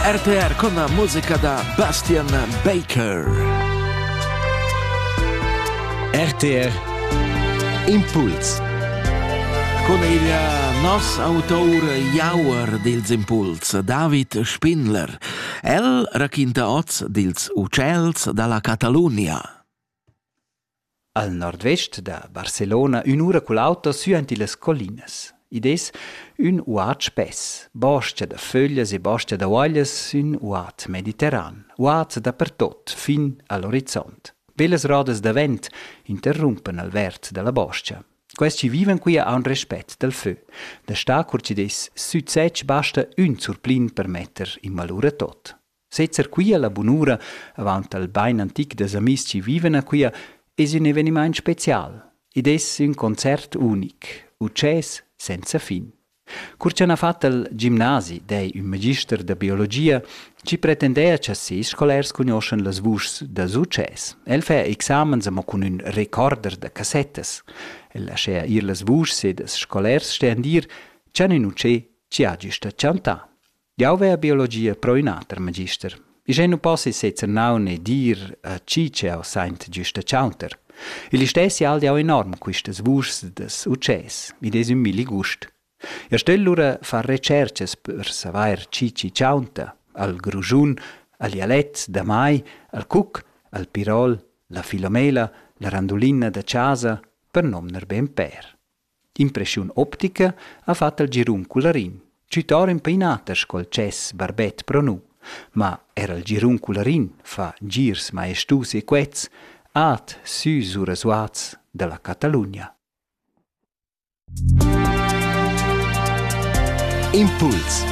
RTR con la musica da Bastian Baker. RTR Impuls. Con il nos autor Jauer dils Impuls, David Spindler. El raquinta oz dils ucels dalla Catalunia. Al nordvest da Barcelona ün'ura cul auto süaint illas collinas. Id es ün uat spess, bostga da föglias e bostga da uaglias sün uat mediterran, uat dapertot fin al orizont. Bellas rodas da vent interrumpan al verd da la bostga. Quels chi vivan qui haun respet dal fö. Da star cur chi'd es südsetsch basta ün surplin per metter in malura tot. Sezzer quia la bunura avant al bain antic da amis chi vivan a quia es ün evenimaint special. Id es ün concert unic, utschès senza fin. Cur cha n'ha fat il gimnasi dei ün magister da biologia chi pretendea cha ses scolars cugnoschan las vuschs dals utschès. El fa examens amo cun ün recorder da cassettas. El laschea ir las vuschs ed els scolars stean dir, cha ün utschè chi ha güsta chantà. Jau vea biologia pro ün ater magister. I sche nu possi sezzer naun e dir a chi ch'eau saint giusta chauter. Il istessi hal jau enorm quistas vuschs das ucces, id es ün milli gust. Eu stögl lura far retscherchas per savair chi chi chaunta, al grujun, al dialett da mai, al cuc, al pirol, la filomela, la randulinna da chasa, per nomner be ün pêr. Impreschiun optica ha fat el girun cularin, tschütar ün painater sco il tschess barbet pro nu. Ma er il girun cularin fa girs maestus e quets, at sü sura suats da la Catalugna. Impuls